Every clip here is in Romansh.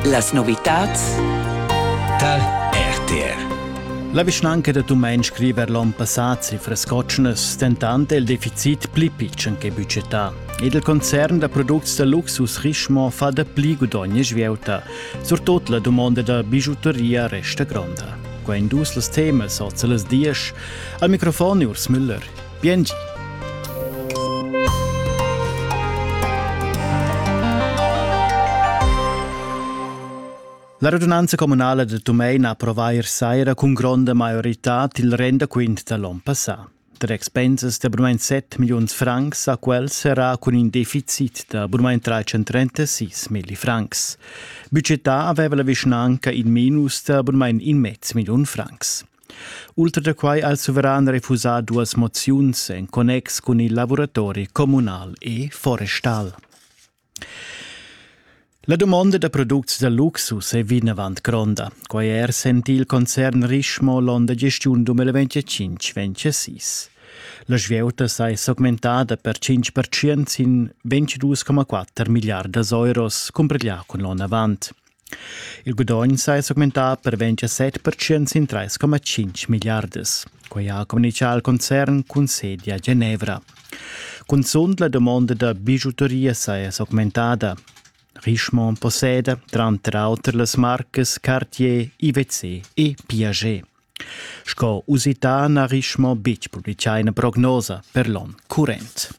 Las novitads tar RTR. La vischnanca da Tumein scriva l'onn passà cifras cotschnas, dentant è il deficit pli pitschen che budgetà. Ed il concern da products da luxus Richemont fa dapli gudogn e svieuta. Surtut la dumonda da bijuteria resta gronda. Qua in dus las temas oz las dies. Al microfon Urs Müller. Biengi. La radunanza communala de Tumein ha approvà ier saira cun gronda maioritad il rendaquint da l'on passà. Tar expensas d'abunament 7 milliuns francs a quels serà cun in deficit da abunament 336 milli francs. Budgetà aveva la vischnanca in minus da abunament in mezz milliun francs. Ultra da quai ha il suveran refusà duas moziuns en connex cun il lavuratori communal e forestal. La domanda da products da luxus è vinavant gronda. Quai è er sentì il concern Richemont l'onn da gestiun 2025-26. La svieuta sa è s'augmentada per 5% sin 22,4 miliardas euros, cumpreglià cun l'onn avant. Il gudogn sai s'augmentar per 27 percent sin 3,5 milliardas. Quai ha communitgà il concern cun sedi a Genevra. Cunzunt la dumonda da bijuteria saja s'augmentada. Richemont posseda tranter auter las marcas Cartier, IWC e Piaget. Sco usità n'ha Richemont betg publitgà ina prognosa per l'onn current.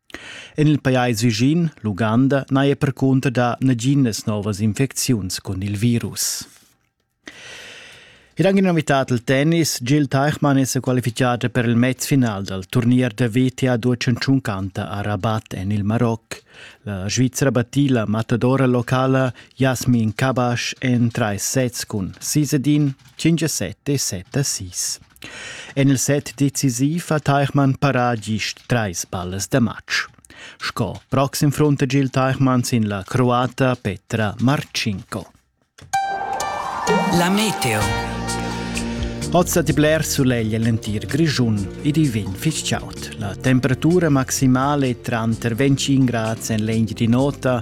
En il pajais vischin, l'Uganda, n'haja percunter dà naginas novas infecziuns cun il virus. Ed anche in novità del tennis, Jill Teichmann è qualificata per il matchfinal dal turnier da WTA Deutschland Canta a Rabat en il Maroc. La Svizzera battì la matadora locala Jasmin Kabash en tre sets cun 6-1, 5-7 e 7-6. En il set decisiv ha Teichmann parà gist trais ballas da match. Sco proxim frunta Gil Teichmann sin la croata Petra Marcinko. La meteo. Oz da bler suleglia l'entir Grischun ed i vegn fitg chaud. La temperatura maximale è tranter 25 grads en legna di nota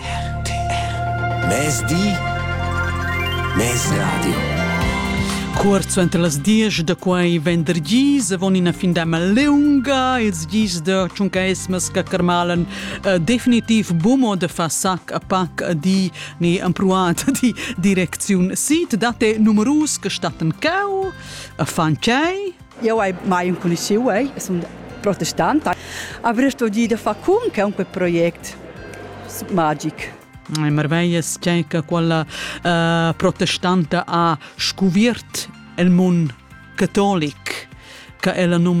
RTR Mezdi Mezradio Cuort suenter las diesch da quai vendergis avon ina findama lunga ils gis da tschuncaismas che carmalan uh, definitiv bumo de fa sac a pac a di ni ampruat di direcziun sit date numerus che statten cau a fan tschei Io hai mai conosciu, ei, sun protestant. Avrei studiu da far cum che un per project magic. Marveias tgei che quella uh, protestanta ha scuviert el mund catolic che ella numna